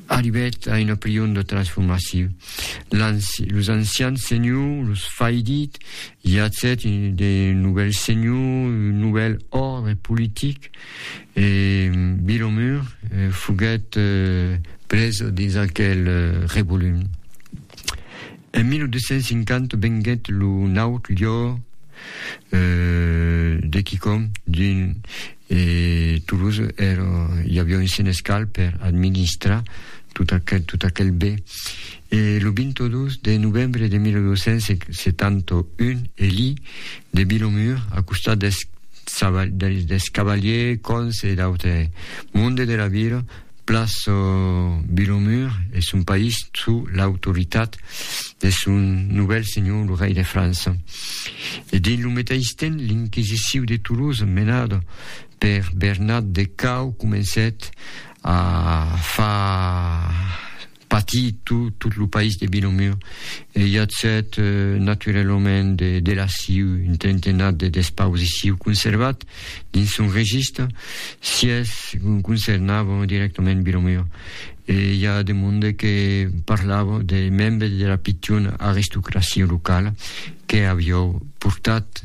Arribèt a una prion de transformacion. Los ancians senhors los faidit, i atzèt de novèls senhors, un novèl òrdre politic, e Vilomur foguèt presa dins aquel revolum. En 1250 venguèt lo naut lieu de quicòm d'un e Toulouse èra, i aviá un senescal per administrar tot aquel, tot aquel bé. E lo 22 de novembre de 1271 Eli de Bilomur, a costat dels, dels cavaliers, còns e d'autre monde de la vila, Plas Vilomur es un país sous l'autoritat de son novèl senhor, lo rei de França. E dins lo meteis temps, l'inquisiciu de Toulouse, menada per Bernat de Cao, comencèt a far Pati tu, tot lo país de Vilomur e i atzèt naturalament de delassiu un trentenat de despausiciu conservat dins son regista, sies concernavan directament Vilomur. E i a de monde que parlava de membres de la pichona aristocracia locala que aviou portat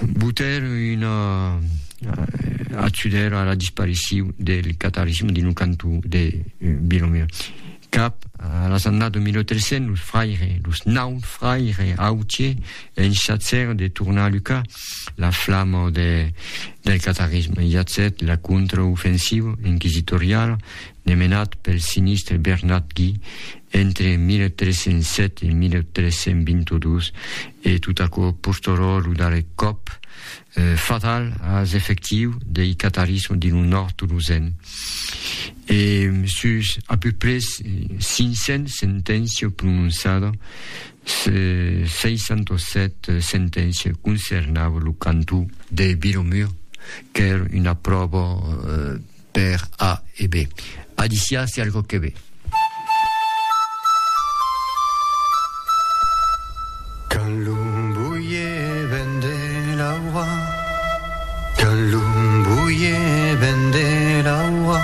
Boter una atzudèra a la dispariciu del catolicisme dins lo cantó de Bilomier. Cap a las annadas de 1300, los fraires, los naut fraires autiers, enchatzèron de tornar lucar la flama de, del catarisme. I atzèt la contraofensiva inquisitoriala demenat pel sinistre Bernat Guy entre 1307 e 1322 E tot aquò postorò lo darrèr còp fatal as efectius dei catarís dins lo nòrd tolosen. E sus a peu pres 500 senténcias prononçadas, 67 senténcias concernavan lo cantó de Vilomur, qu'èra una pròva Per A e B. Alícia, se algò que ve. Quand lo boie ven de l'aura Quand lo boie ven de l'aura